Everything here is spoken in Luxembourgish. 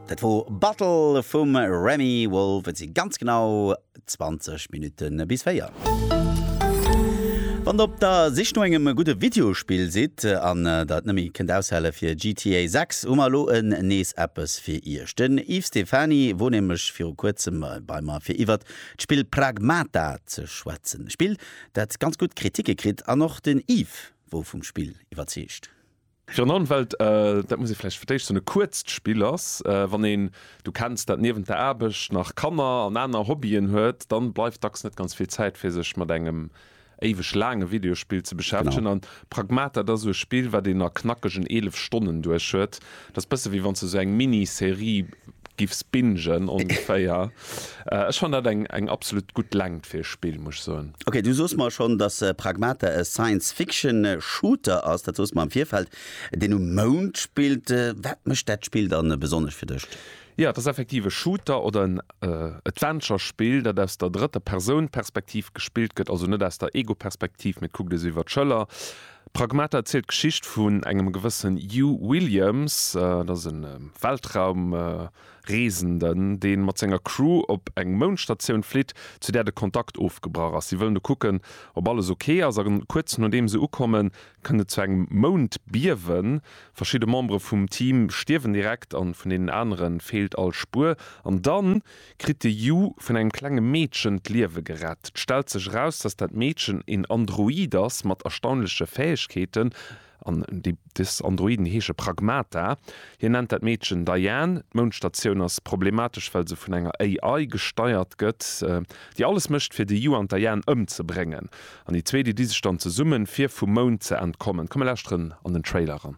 Dat wor Bottle vum Remi Wolf. Et si ganz genau 20 Minutten bis 4. Wann der op der Sich no engem gudde Videospill sidd an der et nëmme kënnt aushale fir GTA 6, hu mer elo en nees eppes fir Iech. Den Yves Stephany wor nämlech viru kuerzem bei mer fir iwwert d'Spill Pragmata ze schwätzen. E Spill dat ganz gutt Kriticke kritt an och den Yves wor vum Spill iwwerzeegt. Virun allem well dat muss ee vläicht fir d'éischt soen e kuerzt Spill ass. Wann een, du kenns dat, niewent der Aarbecht nach Kanner an aner Hobbyen huet, dann bleift dacks net ganz vill Zäit fir sech mat engem éiweg laange Videospill ze beschäftegen. An Pragmata, dat ass esou e Spill wat een a knackegen 11 Stonnen duerch huet. Dat ass bësse wéi wann s de esou eng Mini-Serie giffs bingen ongeféier. Ech fann dat eng eng absolut gutt Längt fir e Spill, muss ech soen. Ok, du soos mer schonn, dass Pragmata e Science-Fiction-Shooter ass, dat soos mer am Virfeld, deen um Mound spillt. Wat mécht dat Spill dann besonnesch fir dech? Jo, et ass effektiv e Shooter oder en Adventure-Spill, dat aus der drëtter Persoun-Perspektiv gespillt gëtt, also net aus der Ego-Perspektiv, mee et kuckt ee sou iwwer d'Schëller. Pragmata zielt d'Geschicht vun engem gewëssen Hugh Williams, dat ass e Weltraumreesenden, dee mat senger Crew op eng Moundstatioun flitt, zu där de Kontakt ofgebrach ass. Si wëllen do kucken, ob alles ok ass, a kuerz nodeem se ukommen, kënnt et zu engem Moundbiewen. Verschidde Membere vum Team stierwen direkt, a vun deenen anere feelt all Spuer. An dann? kritt de Yu vun engem klenge Meedchen d'Liewe gerett. Et stellt sech eraus, dass dat Meedchen een Android ass mat erstaunleche Fäegkeeten, an déi des Androiden heesche Pragmata. Hien nennt dat Meedchen Diane. D'Moundstatioun ass problematesch, well se vun enger AI gesteiert gëtt, déi alles mécht fir de Yu an d'Diane ëmzebréngen. An déi zwee, déi di sech dann zesummen, fir vum Mound ze entkommen. Komm mir lauschteren an den Trailer eran.